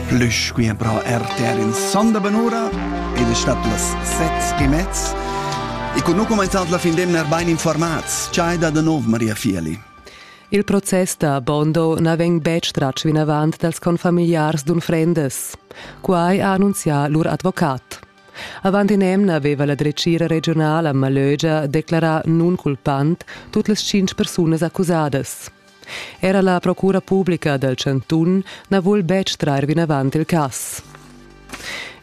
Plüs quia però RTR in sonda bonura ed es stat las set e mezz. E con nu cumainzant la fin d'emna er bain informats. Ciai da da nov, Maria Fieli. Il process da Bondo na vegn betg tratg vinavant dals confamiliars d'unfrendas. Quai ha annunzià lur advocat. Avant in'emna aveva la dretgira regionala a Malögia declarà nunculpant tut las tschintg persunas accusadas. Era la procura publica dal chantun na vul betg trair vinavant il cass.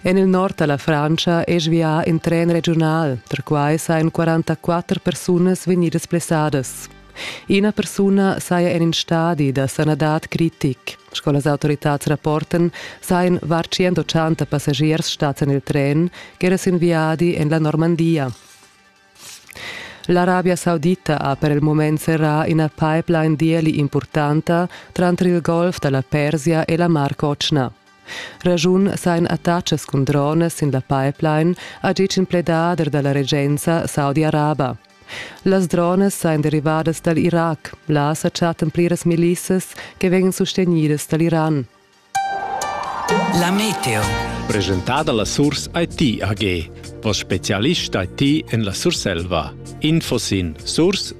En il nord da la Frantscha è svià in tren regiunal. Perquai sajan 44 persunas vegnidas blessadas. Ina persuna saja en in stadi da sanadad critic. Sco las autoritads rapportan, sajan var 180 passagiers stads en il tren ch'era sin viadi en la Normandia. L'Arabia Saudita ha per il mument serrà ina pipeline d'ieli impurtanta tranter il Golf da la Persia e la Mar Cotschna. Raschun sain attachas cun drones sin la pipeline ha ditg in pledader da la regenza saudi-araba. Las drones sain derivadas dal Irac. Là sa chattan pliras milissas che vegnan sustegnidas dal Iran. La meteo. Presentada la Surs IT AG, vos specialist IT en la Surselva. Info sin surs-it.ch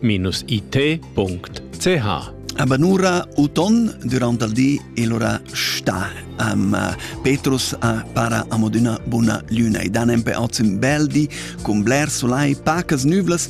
Abanura uton durant il di e l'ora sta am uh, Petrus a para amoduna buna luna e dan empe oz un bel di cun bler solai pacas nuvlas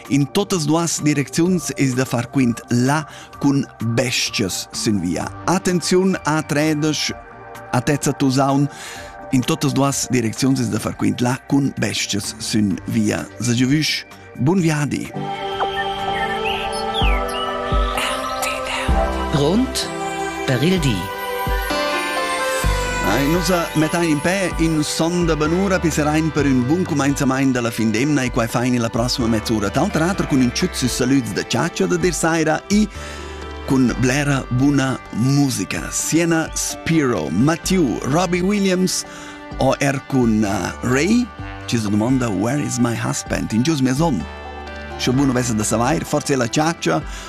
In totas duas direcziuns es da far quint là cun bestias sin via. Attenziun a tredesch, atezza tusaun, in totas duas direcziuns es da far quint là cun bestias sin via. Sagiovüsch, bun viadi! Grund per il di. Ei, nus mettein impè in son da banura pisserein per ün bun cumenzamaint dalla fin d'emna e quai fein illa prossima mezz'ura. D'alter ater cun ün tschüt sü salüds da ciaccia da dir saira e cun blera buna musica. Siena Spiro, Matthew, Robbie Williams o er cun uh, Ray ci si domanda Where is my husband in gius mia son? Sche bunu vesse da savair, forse è la ciaccia